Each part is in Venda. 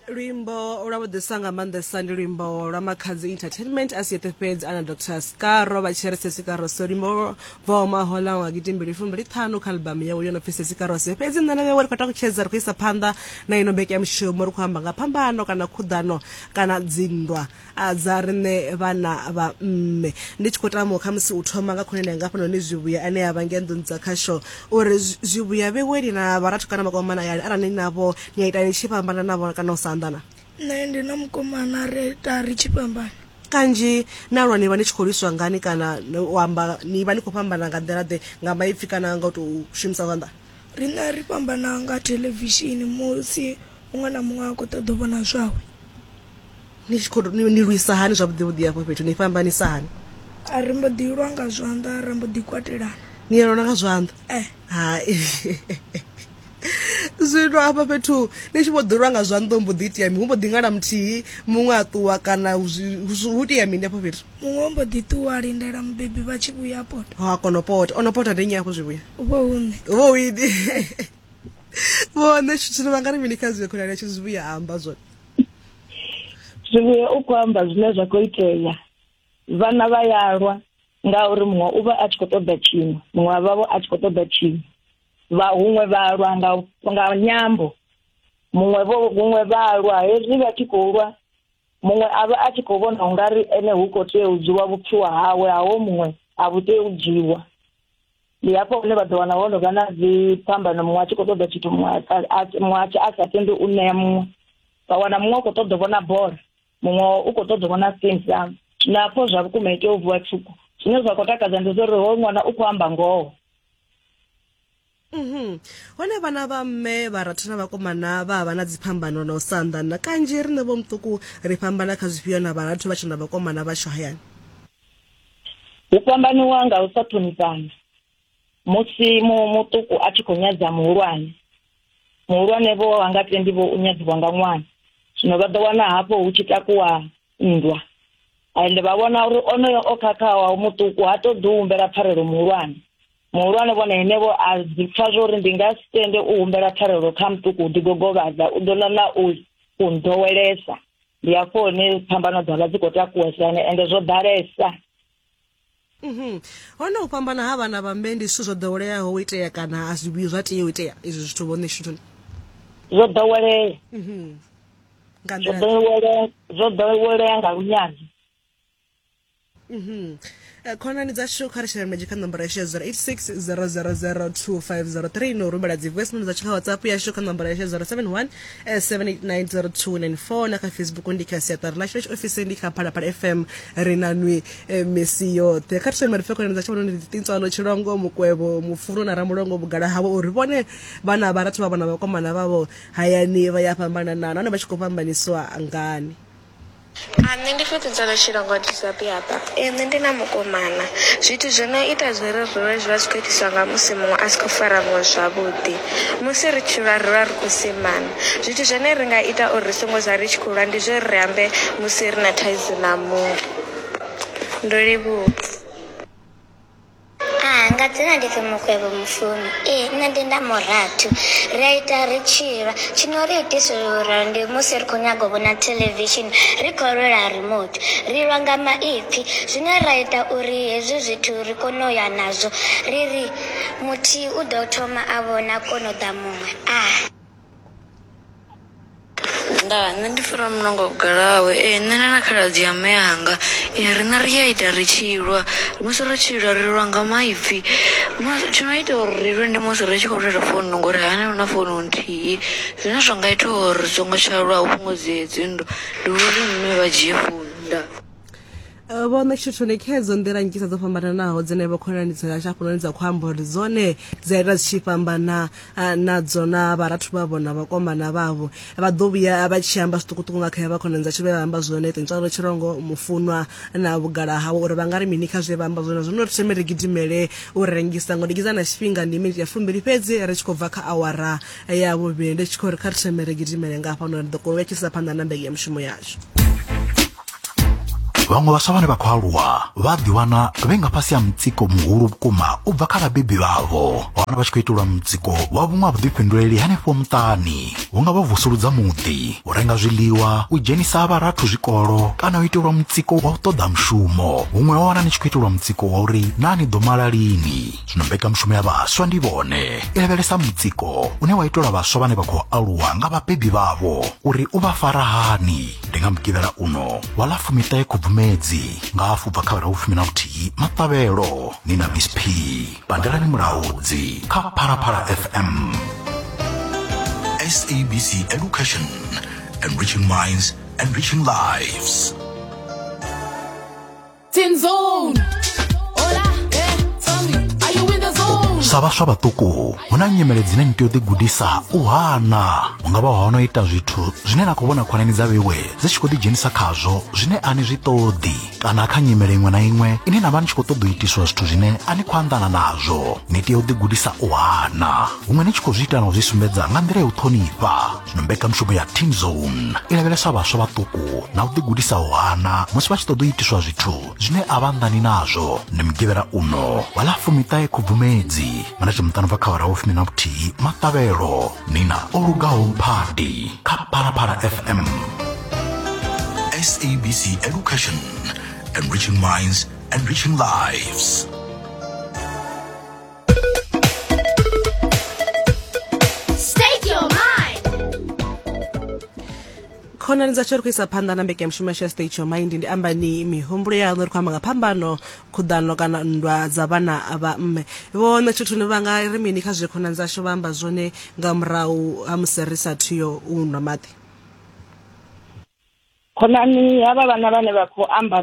luimbo lwa vhuḓisa nga maanḓesa ndi luimbo lwa makhanzi entertainment a siete fhedzi ana dr scaro vha tshi ri sesikaro so luimbo voma hola nga gitimbili fumbili ṱhanu kha albamu yawe yo no pfi sesikaro se fhedzi nṋe na vhewe ri khou takutshedza ri khou isa phanḓa na ino mbekeyamushumo ri khou amba nga phambano kana khuḓano kana dzinndwa a dza riṋe vhana vha mme ndi tshi khou tama kha musi u thoma nga khonani yanga hafhanoni zwivhuya ane a vha ngei nḓuni dza khasho uri zwivhuya vheweli na vharathu kana makomana yani arali ni navho ni a ita ni tshi fhambana navho kana u sa anḓana nṋe ndi na mukomana ri ita ri tshi fhambana kanzhi na lwa ni vha ni tshi khou lwiswa ngani kana u amba ni vha ni khou fhambana nga nḓila ḓe nga maipfi kana nga u tou shumisa zwanḓa riṋe ri fhambana nga theḽevishini musi muṅwe na muṅwe a khou ṱoḓa u vhona zwawe Ni tshi khou ni lwisa hani zwavhuḓi vhuḓi hafho fhethu ni fhambanisa hani? A ri mbo ḓi lwa nga zwanḓa ra mbo ḓi kwatelana. Ni ya lwa nga zwanḓa? Eh. Hai. zwino hafha fhethu ni tshi vho ḓi lwa nga zwanḓa mbo ḓi itea mi hu mbo ḓi ngala muthihi muṅwe a ṱuwa kana hu itea mini hafho fhethu muṅwe mbo ḓi ṱuwa a lindela mubebi vha tshi vhuya pota ha kono pota ono pota ndi nnyi hafho zwi vhuya u vho hune u vho wini vhone tshitshilo vha nga ri mini kha zwi khonani ya tshi zwi vhuya amba zwone zwivhuya u khou amba zwine zwa khou itea vhana vha ya lwa ngauri muṅwe u vha a tshi khou ṱoḓa tshiṅwe muṅwe wa vhavho a tshi khou ṱoḓa tshiṅwe vha huṅwe vha lwa nga nga nyambo muṅwe vho huṅwe vha lwa hezwi vha tshi khou lwa muṅwe a vha a tshi khou vhona u nga ri ene hu khou tea u dzhiwa vhupfiwa hawe haho muṅwe a vhu tei u dzhiwa ndi hafho hune vha ḓo wana ho no vha na dziphambano muṅwe a tshi khou ṱoḓa tshithu muṅwe a tshi a sa tendi u ṋea muṅwe vha wana muṅwe u khou ṱoḓa vhona bola muṅwe u khou ṱoḓa vhona sting sam na pfho zwa vhukuma ite u vuwa tshuku zwine zwa khou takadza ndi zwa uri ho ṅwana u khou amba ngoho mhm. hone vhana vha mme vha ratha na vhakomana vha vha na dziphambano na u sa anḓana kanzhi riṋe vho muṱuku ri fhambana kha zwifhio na vharathu vha tshe na vhakomana vhashu hayani hu fhambaniwa nga u sa ṱhonifhana musi muṱuku a tshi khou nyadza muhulwane muhulwane vho a nga tendi vho u nyadziwa nga ṅwana zwino vha ḓo wana hafho hu tshi takuwa nndwa ende vha vhona uri onoyo o khakhawa muṱuku ha ṱoḓi u humbela pfarelo muhulwane muhulwane vhona henevho a dzi pfa zwo uri ndi nga si tende u humbela pfarelo kha muṱuku u ḓigogovhadza u ḓo ṋaṋa u u nḓowelesa ndi hafho hune phambano dza vha dzi khou takuwa sane ende zwo ḓalesa mhm. hone u fhambana ha vhana vha mme ndi zwithu zwo ḓoweleaho u itea kana a zwi vhuyi zwa tea u itea izwi zwithu vhone shutoni zwo ḓowelea mhm. zwo ḓowelea zwo ḓowelea nga lunyadzo Mhm. Eh, khonani dzashu kha ri shela mulenzhe kha nomboro yashu ya 0860002503 no rumela dzi voice note dzashu kha whatsapp yashu kha nomboro yashu ya 071 eh, 7890294 na kha facebook ndi kha siaṱari lashu lashu ofisi ndi kha phalaphala fm ri na nwi eh, misi yoṱhe kha ri shele marifhe khonani dzashu vhononi ḓiṱintswalo tshilongo mukwevho mufulo na ramulongo vhugala havho uri vhone vhana vharathu vha vhona vhakomana vhavho hayani vha ya fhambanana nahone vha tshi khou fhambaniswa ngani A, Nṋe ndi fhedzisela tshi longwa Giuseppe hafha. Ee, nṋe ndi na mukomana. Zwithu zwo no ita zwo ri ri lwe zwi vha zwi khou itiswa nga musi muṅwe a si khou fara muṅwe zwavhuḓi. Musi ri tshi lwa ri lwa ri khou semana. Zwithu zwine ri nga ita uri ri songo zwa ri tshi khou lwa ndi zwa uri ri ambe musi ri na thaidzo na muṅwe. Ndo livhuwa. Ah nga dzina ndi pfi Mukwevho Mufumi ee nṋe ndi nda murathu ri a ita ri tshi lwa tshi no ri itisa u lwa ndi musi ri khou nyaga u vhona theḽevishini ri khou lwela remote ri lwa nga maipfi zwine ra ita uri hezwi zwithu ri kone u ya nazwo ri ri muthihi u ḓo thoma a vhona kono ḓa muṅwe ah Ndaa nṋe ndi funa muṋango vhugalawe ee nṋe na na khaladzi ya mme anga riṋe ri a ita ri tshi lwa musi ri tshi lwa ri lwa nga maipfi musi tshi no ita uri ri lwe ndi musi ri tshi khou lwela founu ngori hani hu na founu nthihi zwine zwa nga ita uri ri songo tsha lwa hu fhungudzee dzinndwa ndi uri mme vha dzhie founu ndaa. Eh, vho ṋetshetho ndi khedzo nḓila nnzhisa dzo fhambananaho dzine vho khonani dza yashu hafhanoni dza khou amba uri dzone dzi a ita dzi tshi fhambana eh, nadzo na vharathu vhavho na vhakomana vhavho vha ḓo vhuya vha tshi amba zwiṱukuṱuku nga kha ya vha khonani dzashu vhe vha amba zwone ṱintswalo tshirongo mufunwa na vhugala hawe uri vha nga ri mini kha zwe vha amba zwone zwino ri thome ri gidimele u rengisa ngo ndikiza na tshifhinga ndi miniti ya fumbili fhedzi ri tshi khou bva kha awara ya vhuvhili ndi tshi khou ri kha ri thome ri gidimele nga hafhanoni ri ḓo kona u vha tshisa phanḓa na mbege ya mushumo yashu vhaṅwe vhaswa vhane vha khou aluwa vha ḓiwana vhe nga fhasi ha mutsiko muhulu vhukuma u bva kha vhabebi vhavho hone vha tshi khou itelwa mutsiko wa vhuṅwe ha vhuḓifhinduleli henefho muṱani hu nga vha vusuludza muḓi u renga zwiḽiwa u dzhenisa vharathu zwikolo kana u itelwa mutsiko wa u ṱoḓa mushumo huṅwe wa wana ni tshi khou itelwa mutsiko wa uri naa ni ḓo mala lini zwino mbekanyamushumo ya vhaswa ndi vhone i lavhelesa mutsiko une wa itelwa vhaswa vhane vha khou aluwa nga vhabebi vhavho uri u vha fara hani ndi nga mugivhela uno wa ḽa fumiṱahe khubvumedzi nga hafu bva kha vhera vhufumi na vhuthihi maṱavhelo ni na miss p pandelani mulaudzi kha phalaphala fm sabc education enriching minds enriching lives sa vhaswa vhaṱuku hu na nyimele dzine ni tea u ḓigudisa u hana hu nga vha hono ita zwithu zwine na khou vhona khonani dza vhewe dzi tshi khou ḓidzhenisa khazwo zwine a ni zwi ṱoḓi kana kha nyimele iṅwe na iṅwe ine na vha ni tshi khou ṱoḓa u itiswa zwithu zwine a ni khou anḓana nazwo ni tea u ḓigudisa u hana huṅwe ni tshi khou zwi ita na u zwi sumbedza nga nḓila ya u ṱhonifha zwino mbekanmushumo ya teen zone i lavhelesa vhaswa vhaṱuku na u ḓigudisaho hana musi vha tshi ṱoḓa u itiswa zwithu zwine a vha nnḓani nazwo ndi mugivhela uno wa ḽa fumiṱahe khubvumedzi mana tshimuṱano bva kha wara wo fumi na vhuthihi maṱavhelo nina o lugaho phadi kha phalaphala fm sabc education enriching minds enriching lives State your mind. khonani dza tshori khwisa phanḓa na mbekanyamushumo yashu ya state your mind ndi amba ni mihumbulo yaṋu ri khou amba nga phambano khuḓano kana nndwa dza vhana vha mme vho ṋetshethuni vha nga ri mini kha zwe khonani dzashu vha amba zwone nga murahu ha musi ri sa thuyo u nwa maḓi khonani havha vhana vhane vha khou amba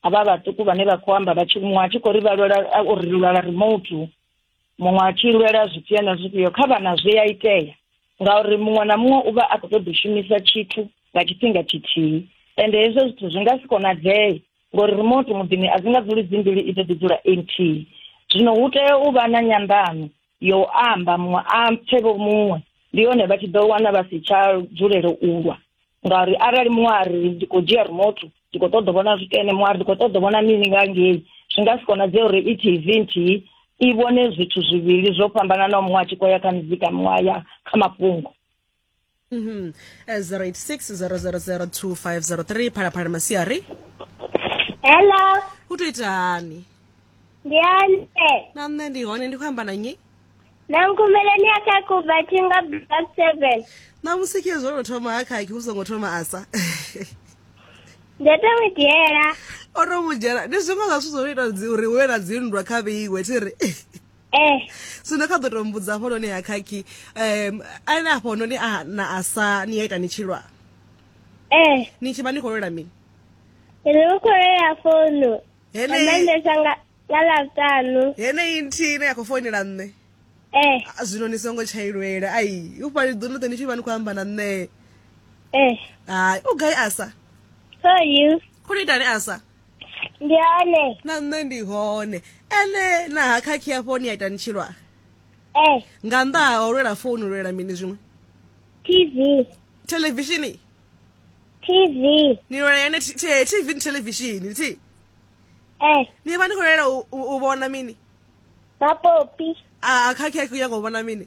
havha vhaṱuku vhane vha khou amba vhatshi muṅwe a tshi khou ri vha lwela uri ri lwela remote muṅwe a tshi lwela zwifhio na zwifhio kha vhana zwi a itea ngauri muṅwe na muṅwe u vha a khou ṱoḓa u shumisa tshithu nga tshifhinga tshithihi ende hezwo zwithu zwi nga si konadzee ngori remote muḓini a dzi nga dzuli dzi mbili i ḓo ḓi dzula empty zwino hu tea u vha na nyandano yo amba muṅwe a pfe vho muṅwe ndi hone vha tshi ḓo wana vha si tsha dzulele u lwa ngauri arali muṅwe a ri ndi khou dzhia remote ndi khou ṱoḓa vhona zwithu ene muṅwe a ri ndi khou ṱoḓa vhona mini nga ngei zwi nga si konadzee uri i tv nthihi i vhone zwithu zwivhili zwo fhambananaho muṅwe a tshi khou ya kha muzika muṅwe a ya kha mafhungo Mm -hmm. uh, 086 000 2503 phalaphala masiari hello u to ita hani ndi hone na nṋe ndi hone ndi khou amba na nnyi na nkumeleni a kha kubatinga black seven na musi khe zwo no thoma ha khakhi u songo thoma asa ndo to mu dzhiela o to mu dzhiela ndi zwiṅwe zwa zwithu zwo no ita uri hu vhe na dzinndwa kha vheiwe thi ri eh so ndo kha ḓo tou mbudza hafho noni ha khakhi um ane afho noni a na a sa ni ya ita ni tshilwa eh ni tshi vha ni khou lwela mini ri vha khou lwela founu maendesa nga nga ḽavhutanu heneyi nthihi ine ya khou founela nṋe eh zwino ni songo tsha ilwela ai u fhali ḓo noṱe ni tshi vha ni khou amba na nṋe eh hai u gai asa so you khou ni itani asa ndi hone na nṋe ndi hone ene na ha khakhi hafho ni a ita ni tshi lwa eh nga nnḓa ha u lwela founu lwela mini zwiṅwe tv televishini tv ni lwela yone t- t- tv ni televishini thi eh ni vha ni khou lwela u- u u vhona mini mapopi a khakhi a khou nyanga u vhona mini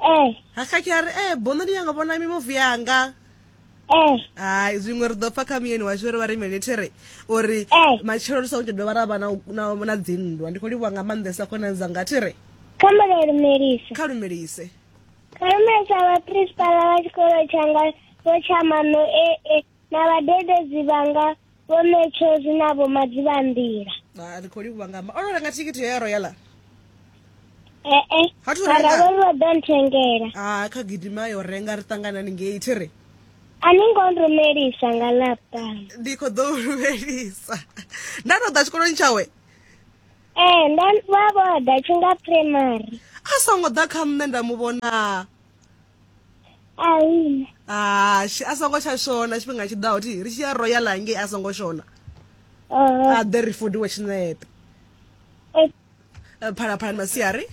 ee ha kha tshi a ri e bono ni yanga vhona mimuvi yanga ee hai zwiṅwe ri ḓo pfa kha muyeni washu ri vha ri military uri Eh. matshelo ri songo tsha dovha ra vha na u- na na dzinndwa ndi khou livhuwa nga maanḓesa khonani dzanga thi ri kha mulalumelise kha lumelise kha lumelisa vhaprinsipala vha tshikolo tshanga vho tsha mano ee na vhadededzi vhanga vho metshozi na vho madzivhanḓila ah, ri khou livhuwa nga o renga thikhithi yo ya royala ee mara vho ri vha ḓo nthengela a ah, kha gidima yo renga ri ṱanganani ngei thi ri a ni ngo rumelisa nga laptop ndi khou ḓo rumelisa nda tou ḓa tshikoloni tshawe ee eh, nda vha vho ḓa tshi nga primary a songo ḓa kha nṋe nda mu vhona ahina hashi a songo tsha shona tshifhinga tshi ḓaho thi ri tshi ya royal hangei a songo shona a ḓe ri fudiwe tshinepe phalaphalani masiari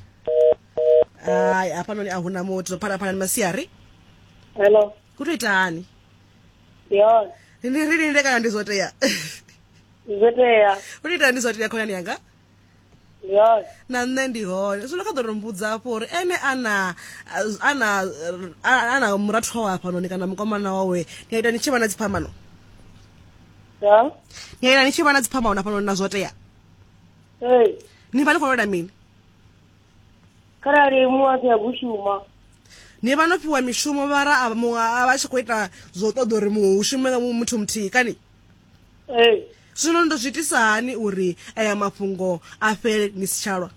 hai hafhanoni a huna muthu phalaphalani masiari hello ku to ita hani yona ndi ri linde kana ndi zwo tea zwo tea u to ita ndi zwo tea khonani yanga na nṋe ndi hone zwino kha ḓo ri mbudza hafho uri ene ana ana ana murathu wawe hafhanoni kana mukomana wawe ni a ita ni tshi vha na dziphambano ni a ita ni tshi vha na dziphambano hafhanoni na zwo tea ni vha ni khou lwela mini kharali muṅwe a si ya kushuma ni vha no fhiwa mishumo vhara a vha tshi khou ita zwo ṱoḓa uri muṅwe hu shume muthu muthihi kani ee zwino ndo zwi itisa hani uri aya mafhungo a fhele ni si tshalwa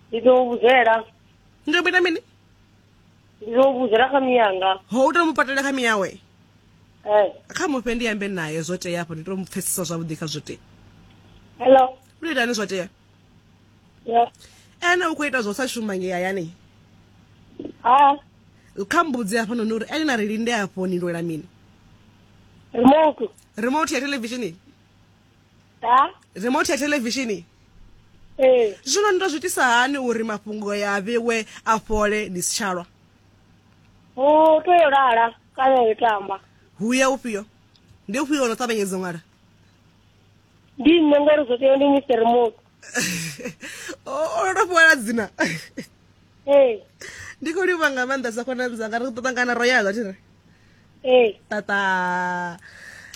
ndi ḓo vhudzela ndo mita mini ndi ḓo vhudzela kha miyanga ho u to mu patela kha miyawe ee kha mufhe ndi ambe naye zwo tea afho ndi to mu pfesesa zwavhuḓi kha zwo tea hello u tou itani zwo tea ene u khou ita zwo sa shuma nge hayani ha kha mbudzi hafhanoni uri ene na ri linde afho ni lwela mini remote remote ya televishini ha remote ya televishini ee zwino ni to zwitisa hani uri mafhungo ya vhewe a fhole ni si tshalwa u tea u lala kana u tamba huya ufhio ndi ufhio ono ṱavhanyedza u ṅwala ndi nṋe ngori zwo tea ndi mr remote o to fhiwala dzina ee ndi khou livha nga maanḓa sa khonani dzanga ri khou ṱangana ro yala thire ee tata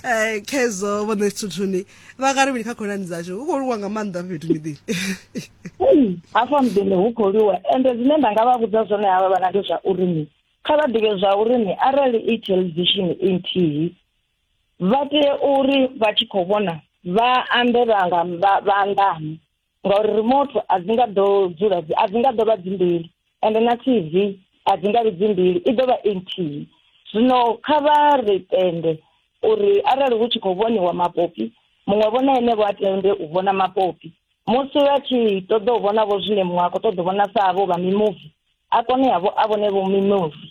um khezo vhone thuthuni vha nga ri mini kha khonani dzashu u khou liwa nga maanḓa fhethu miḓini hafha muḓini hu khou liwa ende zwine nda nga vha vhudza zwone havha vhana ndi zwa uri ni kha vha ḓivhe zwa uri ni arali i television i nthihi vha tea uri vha tshi khou vhona vha ambe vha nga vha anḓane ngauri remote a dzi nga ḓo dzula a dzi nga ḓo vha dzi mbili ende na TV a dzi nga vhi dzi mbili i ḓo vha i nthihi zwino kha vha ri tende uri arali hu tshi khou vhoniwa mapopi muṅwe vhona ene vho a tende u vhona mapopi musi vha tshi ṱoḓa u vhona vho zwine muṅwe a khou ṱoḓa u vhona sa vho vha mimuvi a kone yavho a vhone vho mimuvi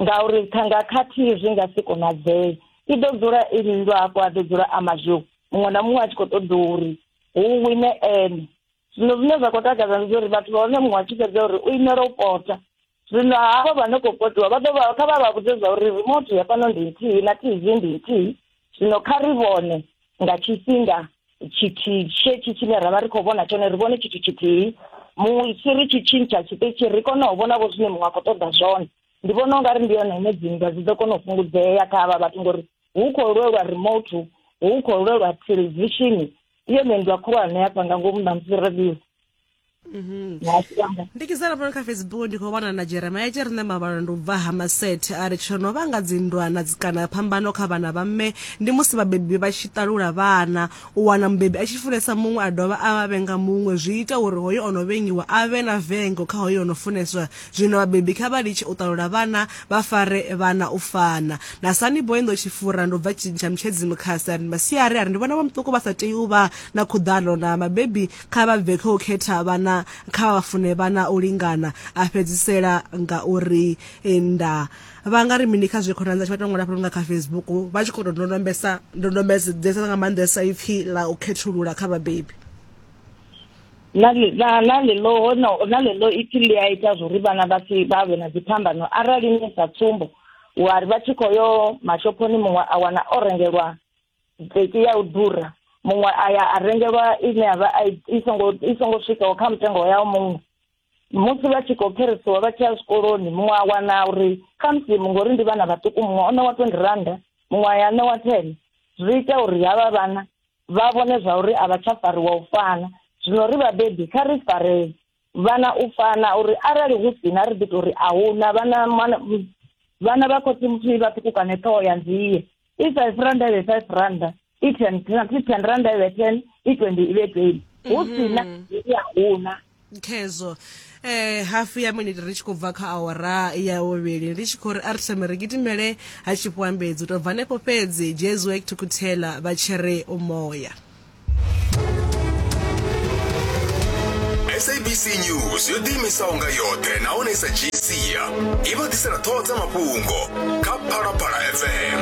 ngauri thanga khathihi zwi nga si konadzee i ḓo dzula i lindwa hafho a ḓo dzula a mazhou muṅwe na muṅwe a tshi khou ṱoḓa uri hu wine ene zwino zwine zwa khou takadza ndi uri vhathu vha hone muṅwe a tshi fhedza uri u imela u pota zwino havho vha no khou potiwa vha ḓo vha kha vha vha vhudze zwa uri remote ya fhano ndi nthihi na tv ndi nthihi zwino kha ri vhone nga tshifhinga tshithihi tshetsho tshine ra vha ri khou vhona tshone ri vhone tshithu tshithihi musi ri tshi tshintsha tshiṱitshi ri kone u vhona vho zwine muṅwe a khou ṱoḓa zwone ndi vhona u nga ri ndi yone ine dzinndwa dzi ḓo kona u fhungudzea kha havha vhathu ngori hu khou lwelwa remote hu khou lwelwa thelevishini iyo nendwa khulwane hafha nga ngomu ṋamusi radio Mhm. ya siamba ndi kizala pano kha facebook ndi khou wana na jeremia tshi ri nṋe mavhalo ndi u bva ha masethe a ri tsho no vhanga dzindwana dzi- kana phambano kha vhana vha mme ndi musi vhabebi vha tshi ṱalula vhana u wana mubebi a tshi funesa muṅwe a dovha a vha vhenga muṅwe zwi ita uri hoyo o no vhengiwa a vhe na vengo kha hoyo o no funeswa zwino vhabebi kha vha litshe u ṱalula vhana vha fare vhana u fana na sani boy ndo tshifura ndo bva tshintsha mutshedzi mukhasi a ri masiari a ri ndi vhona vha muṱuku vha sa tei u vha na khuḓano na mabebi Kha vha bve kha u khetha vhana, kha vha fune vhana u lingana. A fhedzisela nga u ri, Nda vha nga ri mini kha zwe khonani dzashu vha tou ṅwala fhano nga kha Facebook vha tshi khou tou ndondombesa ndondombedzesa nga maanḓesa ipfi ḽa u khethulula kha vhabebi? na li- na na ḽeḽo hono na ḽeḽo ipfi ḽi a ita zwo ri vhana vha si vha vhe na dziphambano arali ni sa tsumbo wa ri vha tshi khou yo mashophoni muṅwe a wana o rengelwa dzeki ya u ḓura muṅwe a ya a rengelwa ine ya vha i songo i songo swikaho kha mutengo yao muṅwe musi vha tshi khou kherisiwa vha tshi ya zwikoloni muṅwe a wana uri kha musi ngori ndi vhana vhaṱuku muṅwe o ṋewa twenty randa muṅwe a ya ṋewa ten zwi ita uri havha vhana vha vhone zwa uri a vha tsha fariwa u fana zwino ri vhabebi kha ri faree vhana u fana uri arali hu sina ri ḓi tori a huna vhana vhana vha khotsi muthu vha ṱhukukane ṱhoho ya nzie i five randa ive five randa i ten i ten randa ive ten i twenty ive twenty hu mhm. sina ya huna khezwo eh hafu ya miniti ri tshi khou bva kha awara ya vhuvhili ndi tshi khou ri a ri thome ri gidimele ha tshifhiwambedzi u tou bva hanefho fhedzi jesuek thukuthela vha tshi ri umoya sabc news yo ḓiimisaho nga yoṱhe nahone i sa dzhii sia i vha ḓisela ṱhoho dza mafhungo kha phalaphala fm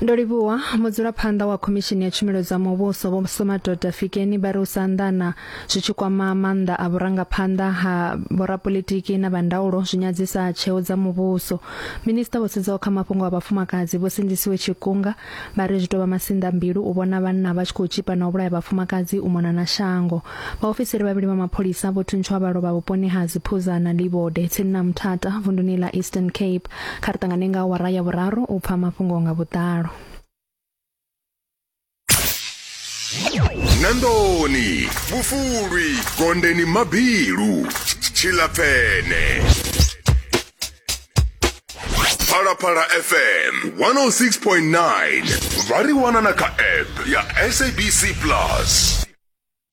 ndo livhuwa mudzulaphanḓa wa khomishini ya tshumelo dza muvhuso vho somadoda fikeni vha ri u sa anḓana zwi tshi kwama maanḓa a vhurangaphanḓa ha vhorapolitiki na vhandaulo zwi nyadzisa tsheo dza muvhuso minista vho sedzaho kha mafhungo a vhafumakadzi vho sindisiwe tshikunga vha ri zwi tou vha masinḓa mbilu u vhona vhanna vha tshi khou tshipa na u vhulaya vhafumakadzi u mona na shango vhaofisiri vhavhili vha mapholisa vho thuntshiwa vha lovha vhuponi ha dziphuza na livode tsini na muthata vunduni ḽa eastern cape kha ri ṱangane nga awara ya vhuraru u pfa mafhungo nga vhuḓalo nandoni vhufulwi gondeni mabilu tshilapfene phalaphala fm 106.9 vha ri wana na kha app ya sabc plus